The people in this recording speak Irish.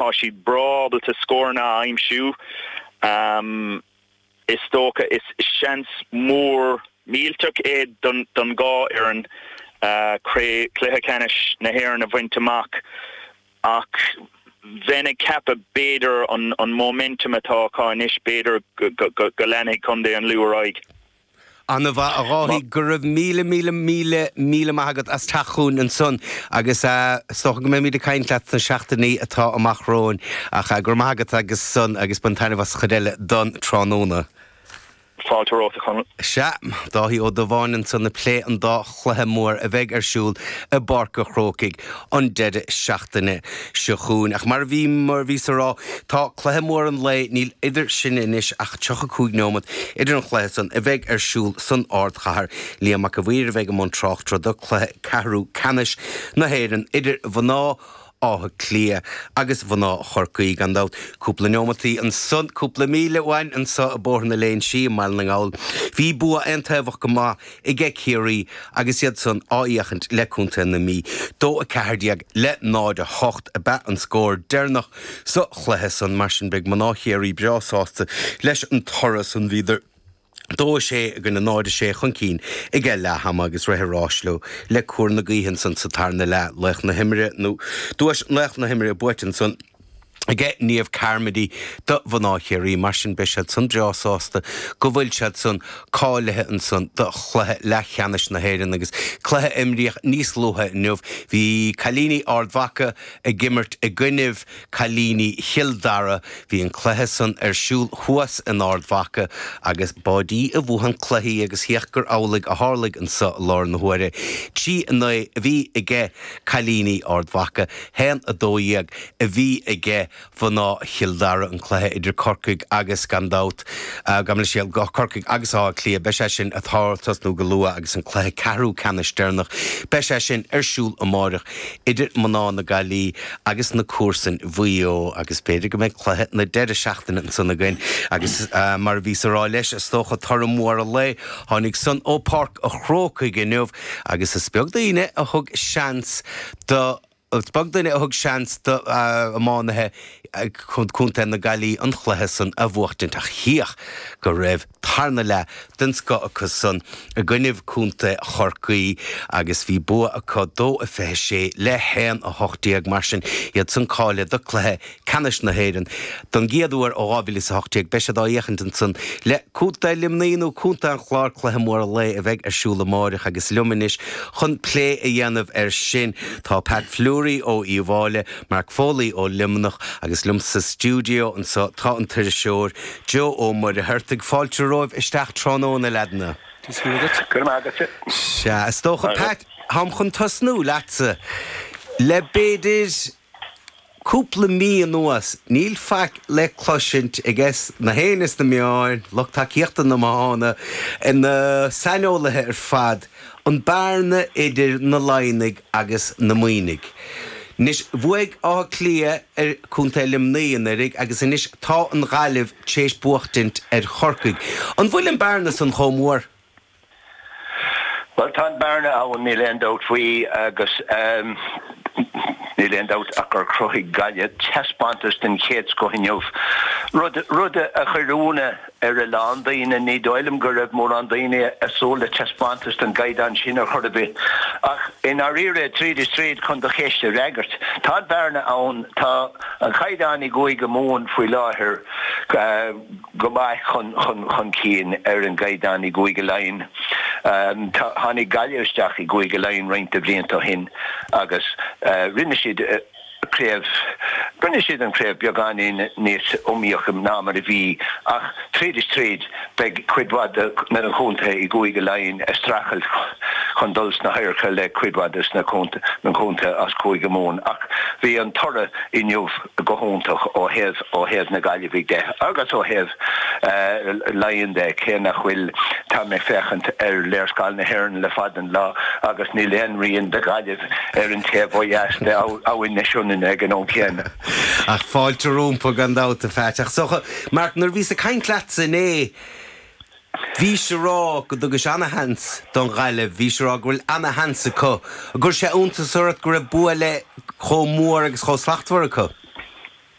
Tá siad breá ábalta scóranna a aimsiú, is dócha. Is seans mór millteach iad don dhá fhoireann cluiche ceannais na hÉireann a bhaint amach ach bheinn ag ceapadh, b'fhéidir, an móiminteam atá acu anois, b'fhéidir go leanfaidh Contae an Lú ar aghaidh. An-mhaith, a Dháithí. Maith. Go raibh míle míle míle míle maith agat as teacht chugainn ansan agus is dócha go mbeimid ag caint leat sna seachtainí atá amach romhainn. Ach go raibh maith agat ansan agus bain taitneamh as an chuid eile don tráthnóna. Fáilte romhat, a Chonall. Sea, Dáithí de Mórdha ansan ag plé an dá. chluiche mór a bheidh ar siúl i bPáirc an Chrócaigh an deireadh seachtaine seo chugainn. Ach mar a bhí, mar a bhíos ag rá, tá cluiche mór an lae, níl idir sin anois ach 35 nóimeat idir an chluiche san a bheidh ar siúl san ardchathair. Liam Mac a Mhaoir a bheidh i mbun tráchtaireachta do chluiche ceathrú ceannais na hÉireann idir mhná Átha Cliath agus mhná Chorcaí, gan dabht. Cúpla neomataí ó shin, cúpla míle uainn anso i Bóthar na Léinn Sí i mBaile na nGall, bhí bua aontaobhach go maith aige Ciarraí agus iadsan á fhéachaint le Contae na Mí. Dó 14 le 0, 8 ab ea an scór deireanach sa chluiche san. Mar sin, beidh mná Chiarraí breá sásta leis an toradh san. Bhíodar. Dó sé i gcoinne 0 6 chun cinn aige leath ama agus rith an rás leo le cóir na gaoithe ansan sa tarna leath, laoch na himeartha nó duais laoch na himeartha buaite ansan aige Niamh Carmody do mhná Chiarraí. Mar sin beidh siadsan breá sásta go bhfuil siadsan cáilithe ansan do chluiche leathcheannais na hÉireann agus cluiche a imríodh níos luaithe inniu bhí cailíní Ard Mhaca ag imirt i gcoinnibh Cailíní Chill Dara, bhí an cluiche san ar siúl thuas in Ard Mhaca agus b'ait é a bhuadh an cluiche agus chíoch gur amhlaidh a tharlaigh anso i lár na huaire. Trí a naoi a bhí age cailíní Ard Mhaca, haon a dó dhéag a bhí age mhná Chill Dara. An cluiche idir Corcaigh agus, gan dabht, gabh mo leithscéal, Corcaigh agus Áth Cliath, beidh sé sin a tosnú go luath agus an cluiche ceathrú ceannais deireanach, beidh sé sin ar siúl amáireach idir mná na Gaillí agus na comharsain Mhaigh Eo, agus b'fhéidir go mbeidh cluiche na deireadh seachtaine ansan againn, agus mar a bhíos a rá leis, is dócha, toradh mór an lae, tháinig san ó Pháirc a' Chrócaigh inniu, agus is beag duine a thug seans do, is beag duine a thug seans d'iománaithe Chontae na Gaillí an cluiche san a bhuachtaint ach chíoch go raibh. tarna leath den scoth acusan i gcoinnibh Contae Chorcaí agus bhí bua acu 2-26 le 1-18 mar sin iadsan cáilithe do chluiche ceannais na hÉireann don gcéad uair ó 2018. Beidh siad á dh'fhéachaint ansan le Contae Luimní nó Contae an Chláir cluiche mór an lae a bheidh ar siúl amáireach agus liom anois chun plé a dhéanamh ar sin tá Pat Fleury ó Uíbh Fháile, Mark Foley ó Luimneach agus liom sa stiúdeo anso tá an t-iriseoir. Joe Ó Muircheartaigh fáilte romhaibh isteach tráthnóna a leaideanna. Is dócha, Pat, táim chun tosnú leatsa. Le b'fhéidir cúpla mí anuas, níl faic le cloisint ag éinne sna meáin, lucht tacaíochta amháin, na saineolaithe ar fad, An bearna idir na Laighnigh agus na Muimhnigh. Anois bhuaigh Áth Cliath ar Chontae Luimnigh anuiridh agus anois tá an Ghaillimh tar éis buachtaint ar Chorcaigh. An bhfuil an bearna san chomh mór? Bhuel, tá an bearna ann, níl aon dabht faoi agus níl aon dabht ach gur chruthaigh Gaillimh teaspántas den chéad scoth inniu, rud, rud a chuir ionadh Ar a lán daoine, ní dóigh liom go raibh mórán daoine ag súil le taispeántas den gcaighdeán sin ar chor ar bith. Ach, i ndáiríre, tríd is tríd, chun do cheist a fhreagairt, tá an bhearna ann, tá an caighdeán i gCúige Mumhan faoi láthair go maith chun cinn ar an gcaighdeán i gCúige Laighean. Tháinig Gaillimh isteach i gCúige Laighean roinnt de bhlianta ó shin agus rinne siad, craobh. Rinne siad an chraobh beagáinín níos iomaíocha ná mar a bhí, ach tríd is tríd, beidh cuid mhaith de na contaetha i gCúige Laighean ag streachailt chun dul sna hadharca le cuid mhaith de na contaetha as Cúige Mumhan. Ach bhí an toradh inniu go hiontach ó thaobh, ó thaobh na Gaillimhe de agus ó thaobh. Laighean de, cé nach bhfuil Tá mé ag féachaint ar léarscáil na hÉireann le fada an lá agus níl aon rian de Ghaillimh ar an taobh ó dheas de Abhainn na Sionainne ag an am céanna. Ach fáilte rompu, gan dabht, a Pheait. Ach so, Mark, nuair a bhíos ag caint leatsa inné, bhís a rá go dtugann tú ana-sheans don Ghaillimh, bhís a rá go bhfuil ana-sheans acu. Ar chuir sé iontas ort go raibh bua chomh mór agus chomh slachtmhar acu?